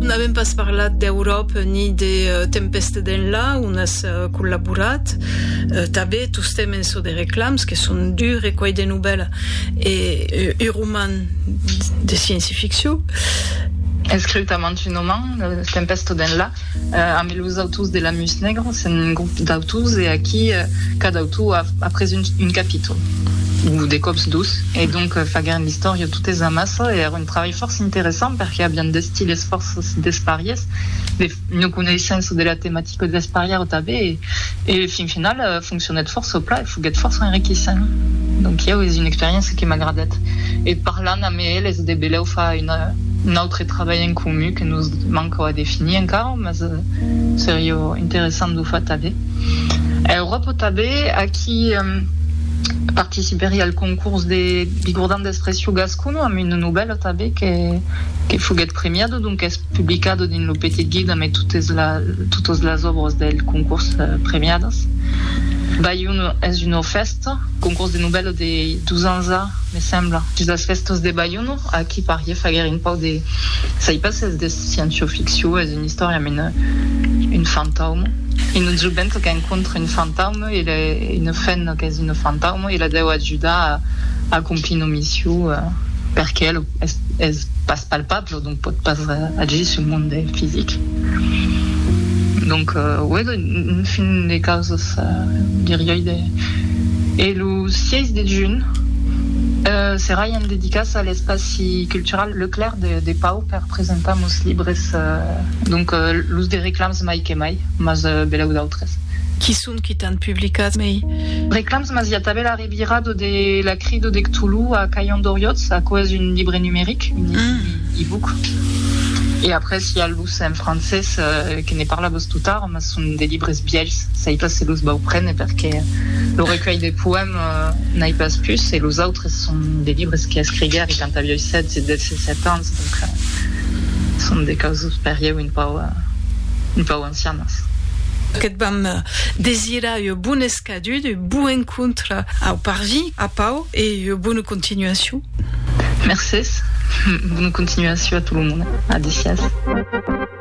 N'avèm pas parlat d'Euròp ni de Tempèste d'Enlà, ont as collaborat. Tanben tostemps en çò de reclams, que son du recuelh de novèla e un roman de scienci-ficcion. Escriu tamant un roman, Tempèste d'Enlà, ambe los autors de Lamus Negro, s'en un grop d'autors e aquí cada autor a pres un capítol, o de còps dos, e donc faguèren l'istòria totes amassa e èron. Trabalh fòrça interessant perque avián d'estiles fòrça despariers, de ua coneissença de la tematica desparièra tanben e fin final foncionèt fòrça plan e foguèt fòrça enriquissent. Donc ieu es una experiéncia que m'agradèt e parlant amé eles de belèu far un autre trabalh en comun que nos manca a definir encara mas seria interessant d'o far tanben. A Euròpa tanben aquí participeria al concurs de bigordan d'expression gascon. Cono amb una novèla tanben que foguèt premiada, donques publicada dins lo Petit Guide amé totas las òbras del concors premiadas. Balhona es una fèsta, concors de novèla de dos ans a, me sembla, dins las fèstas de Balhona. Aquí pariá faguèr un pauc de, sai pas s'es de sciencio-ficcion, es una istòria amé un fantauma, una joventa qu'encontra un fantauma, Il a una fenna qu'es una fantauma, ila deu ajudar a acomplir una mission perque el es pas palpable, donc pòt pas agir sul monde fisic. Donc uèi un fin de causas diriái de. E lo 6 de junh serai en dedicas a l'espaci cultural Leclerc de Pau per presentar mos libres, donc los de reclams mai que mai, mas belèu d'autres. autres. Qui son qui t'an publicat mei reclams? Mas i a tanben la revira do de la cri do de Cthulhu a Cailhon d'Oriòtz, aquò es un libre numeric, un e-book, e après i a los en francés que ne parla vos tot ara, mas son de libres bièlhs, sai pas se los vau prene perque lo recuèlh de poèmes n'ai pas pus e los autres son de libres que escriguèri quand avioi 16 e 17 ans, donc son de causas per ieu un pauc ancianas. Que't vam desirar ua bona escadut, un bon encontre au parvis, a Pau, e ua bona continuacion. Mercés. Bona continuacion a tot lo monde. Adicias.